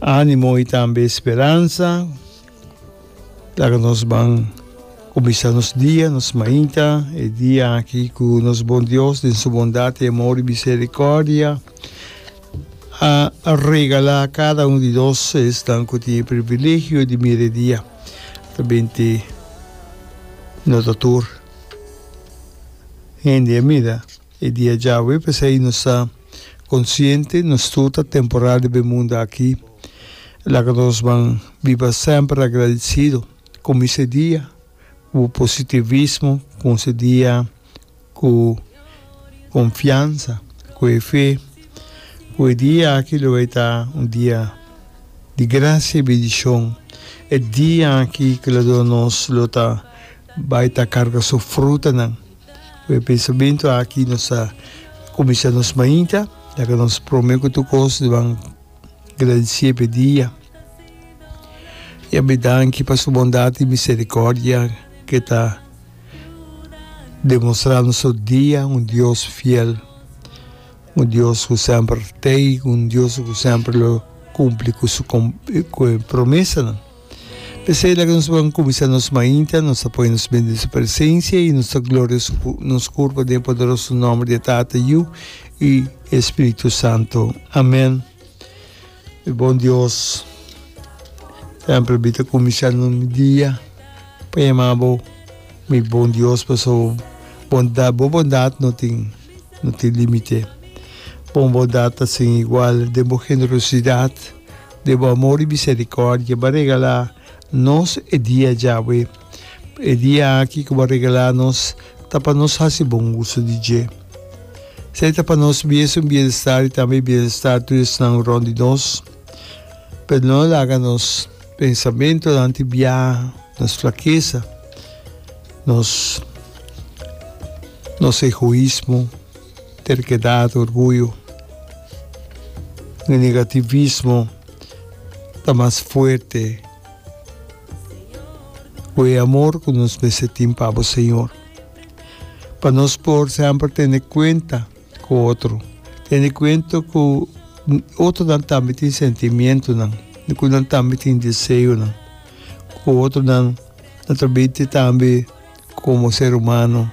Animo y tambe speransa. Laga nos ban cuminsa nos dia, nos mainta, e dia aki cu nos bon Dios den su bondad y amor y misericordia a regala cada un di nos esnan cu tin e privilegio di mira e dia. Ta benti no ta tur hende a mira. E dia djawe, p'esei nos ta konsiente nos tur ta temporal riba e mundu aki. Laga nos ban biba semper agradisido ku mis e dia, ku positivismo, ku nos e dia ku konfiansa, ku e fe, ku e dia aki lo e ta un dia di grasia i bendishon, e dia aki ku lo dor nos lo ta bai ta karga su frutanan. E pensamentu aki nos ta kuminsá nos mainta, laga nos promé ku tur kos di ban gradisé pa e dia. Yam'é danki pa su bondat i miserikòrdia ke ta demonstrá nos tur dia, un Dios fiel, un Dios ku semper tei, un Dios ku semper lo kumpli ku su ku e promesanan. P'esei laga nos ban kuminsá nos mainta, nos ta pone nos bende di su presensia i nos ta gloria nos kurpa den e poderoso nòmber di e Tata, Yu i e Spiritu Santu. Amèn. Mi bon Dios, tempel bita kuminsá no mi dia pa yamá bo mi bon Dios, pasobra bo bondat, bo bondat no tin, no tin límite. Bo bondat ta sin igual den bo generosidat. De bo amor i misericordia bo a regala nos e dia djawe. E dia aki cu bo a regala nos ta pa nos haci bon uso di dje. Esey ta pa nos miesun bienestar i tambe bienestar tur esnan rond di nos. Pero no laga nos pensamentonan tibia, nos flaqueza, nos egoismo. Terkedad, orguyo i negativismo ta mas fuerte ku e amor ku nos mester tin pa bo Señor. Pa nos por semper tene kuenta ku otro, tene kuenta ku otronan tambe tin sentimientonan i ku nan tambe tin deseonan, ku otronan ta trabai tambe. Komo ser humano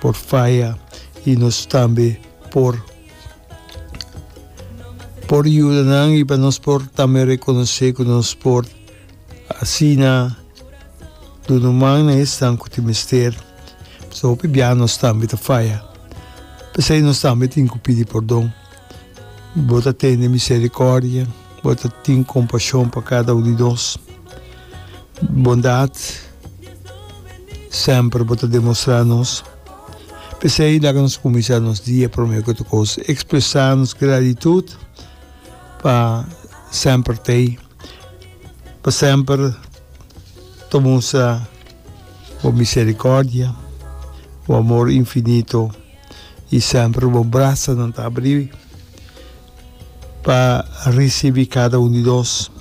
por faya i nos tambe por por yuda nan i pa nos por tambe rekonosé ku nos por asina duna man na esnan ku tin mester. Pasobra hopi biaha nos tambe ta faya, p'esei nos tambe tin ku pidi pordon. Bo ta tene miserikòrdia, bo ta tin kompashon pa kada un di nos. Bondat semper bo ta demostrá nos. P'esei laga nos kuminsá nos dia promé ku tukos ekspresá nos gratitut pa semper t'ei, pa semper ta mustra bo miserikòrdia, bo amor infinito. i semper bo brasanan ta abrí pa risibí kada un di nos.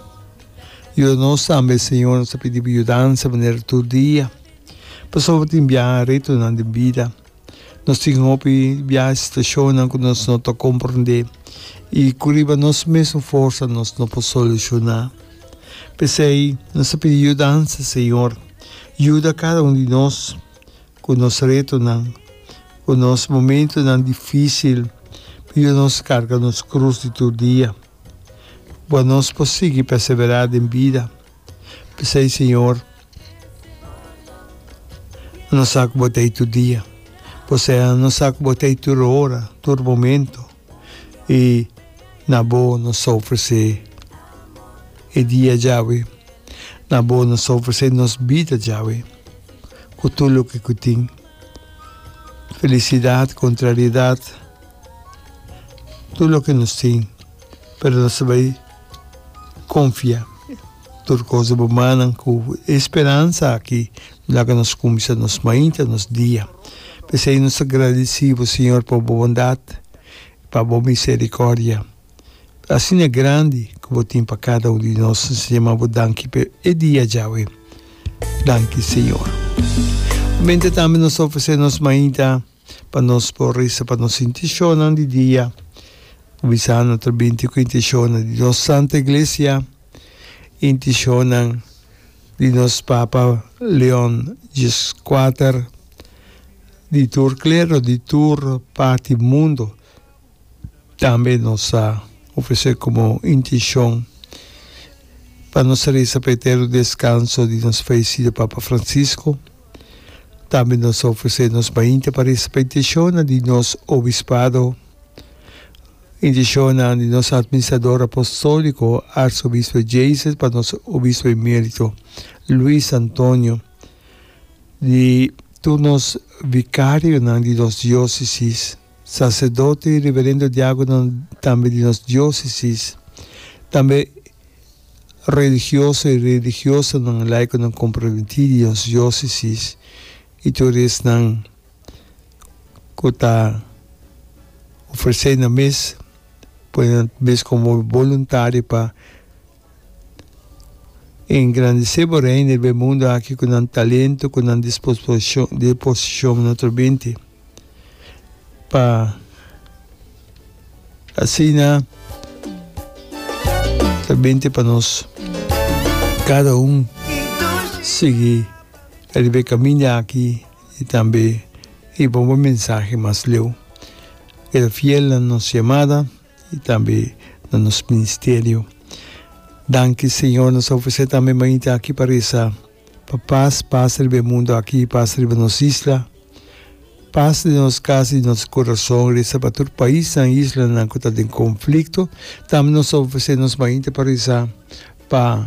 Yuda nos tambe, Señor, nos ta pidi Bo yudansa manera tur dia. Pasobra tin biaha retonan den bida. Nos tin hopi biaha situashonnan ku nos no ta komprendé i ku riba nos mesun forsa nos no por solushoná. P'esei nos ta pidi yudansa, Señor. Yuda kada un di nos. ku nos retonan, ku nos momentunan difísil, p'yu nos karga nos krus di tur dia, pa nos por sigui perseverá den bida. P'esei, Señor, nos sa ku Bo ta ei tur dia. Bo sa ku Bo ta ei tur ora, tur momento. y na bo nos ta ofrece e dia djawe, na bo nos ta ofrece nos bida djawe cu tur loke cu tin, felicidad, contrariedad, tur loke nos tin, pero nos ta bay confia. Tur kos bo manan ku e speransa aki laga nos kumsa nos mainta nos dia. P'esei nos ta gradisí bo, Señor, pa bo bondat i pa bo miserikòrdia asina grandi ku bo tin pa kada un di nos. Nos ta yama bo danki pa e dia djawe. Danki, Señor. Mente tambe nos ta ofresé nos mainta pa nos por resa pa nos intishonnan di dia, kuminsando ta binti ku intishonnan di nos Santu Iglesia. intishonnan di nos Papa Leon Xvi di tur klero, di tur parti mundu, tambe nos a ofresé komo intishon pa nos a resa pa e etèrno deskanso di nos falesido Papa Francisco. Tambe nos a ofresé nos mainta pa resa pa intishonnan di nos obispado. Indishonnan di nos Atministrador Apostolico Arsobispo e Jayces pa nos Obispo Emerito Luis Antonio, di tur nos Vicarionan di nos Diocesis, Sacerdote y Reverendo Diaconan tambe di nos Diocesis, tambe Religioso y Religiosanan Laiconan Comprometi di nos Diocesis y tur esnan. ku ta ofresé nan mes pone nan mes komo boluntario pa engrandesé bo Reino riba e mundu aki ku nan talento, ku nan disposishon na otro binti. Pa asina ta binti pa nos kada un sigui riba e kaminda aki. I tambe i bon bo mensahe mas leu e ta fiel na nos yamada i tambe na nos ministerio. Danki Señor nos ta ofresé tambe mainta aki pa resa pa pas pasa riba e mundu aki i pasa riba nos isla. Pas den nos kas i nos kurason resa pa tur paisnan i islanan ku ta den konflikto. Tambe nos ta ofresé nos mainta pa resa pa.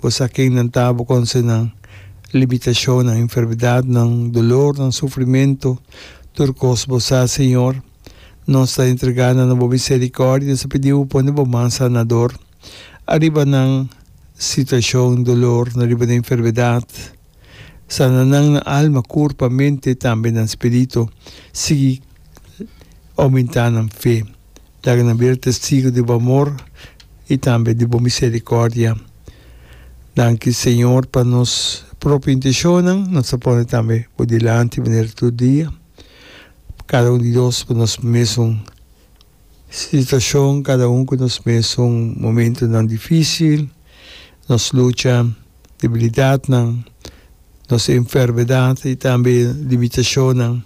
Bo sa ken nan ta, bo conoce nan limitacionnan, enfermedadnan, dolornan, sufrimento, tur cos bo sa, Señor. Nos ta entrega nan na bo misericordia, nos ta pidi bo pone bo man sanador ariba nan situacion dolor, na riba nan enfermedad. Sana nan nan alma, kurpa, mente i tambe nan spiritu. Sigui oumentá nan fe. Laga nan bira testigu di bo amor i tambe di bo miserikòrdia. Danki, Señor, pa nos propio intenshonnan nos ta pone tambe bo dilanti manera tur dia. Kada un di nos, pa nos mesun. Situashon, Kada un ku nos mesun momentunan difísil, nos lucha, debilidatnan, nos enfermedat i tambe limitashonnan.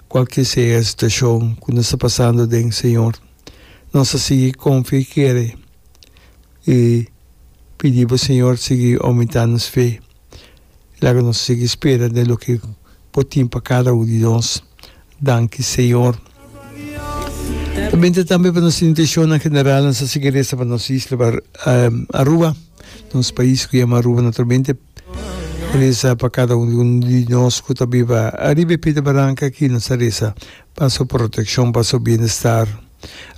Kualke sea e situashon ku nos ta pasando den, Señor, nos a sigui konfia i kere i pidi bo, Señor, sigui oumentá nos fe. Laga nos sigui spera den loke Bo tin pa kada un di nos. Danki, Señor. Ta bende tambe pa nos intenshonan general nan sa sigui resa pa nos isla Aruba, nos pais ku yama Aruba naturalmente. Resa pa kada un di nos ku ta biba ariba e pita baranka aki. Nos ta resa pa su protekshon, pa su bienestar.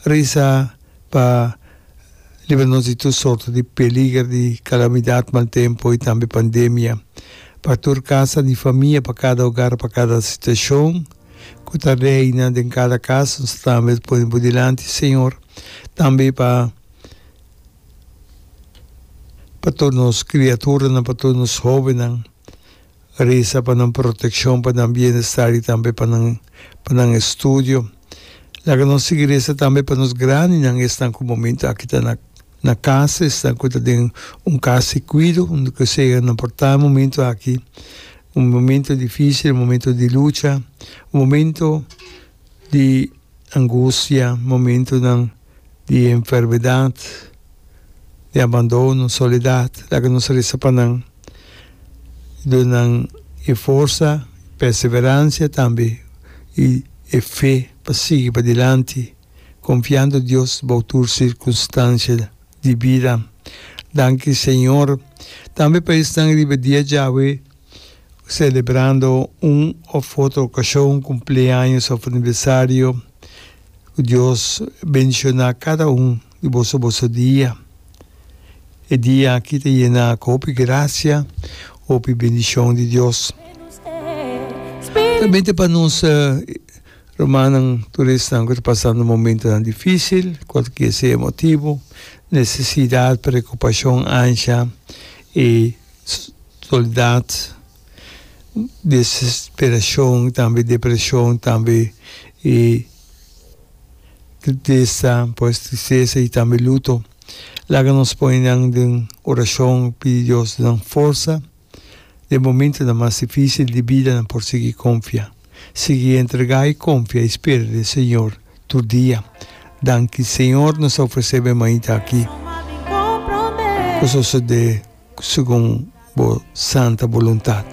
Resa. pa libra nos di tur sorto di peliger di kalamidat, mal tempu i tambe pandemia, pa tur kasa di famia, pa kada ogar, pa kada situashon ku ta reina den kada kas. Nos ta traha mes pone Bo dilanti, señor, tambe pa pa tur nos kriaturanan, pa tur nos hobennan, Resa pa nan protekshon, pa nan bienestar i tambe pa nan pa nan estudio. Laga nos sigui resa tambe pa nos grandinan, esnan ku momentu aki ta na na kasa, esnan ku ta den un kas di kuido, unda ku sea nan por ta momentu aki, un momentu difisil, un momentu di lucha, un momentu di angustia, momentunan. di enfermedad, di abandono, soledad, laga nos resa pa nan y duna nan e forsa, perseverancia tambe y e fe pa sigui padilanti confiando Dios bou tur circunstancia di bida. Danki Señor tambe pa esnan riba dia djawe. celebrando un of otro ocasion, cumpleaños of aniversario, cu Dios bendiciona cada un di boso boso dia. E dia aki ta yena cu hopi gracia, hopi bendicion di Dios. Tambente pa nos rumannan turistnan cu ta pasando momentonan dificil, cualkier sea e motibo, necesidad, preocupacion, ansia y. Soldat, desesperashon tambe depreshon tambe i tristesa, pues tristesa i tambe luto. Laga nos pone nan den orashon pidi Dios nan forsa den momentonan mas difísil di bidanan por sigui konfia. Sigui entrega i konfia i spera den Señor tur dia. Danki Señor nos a ofresé bo e mainta aki. Ku sosodé segun bo santa boluntat.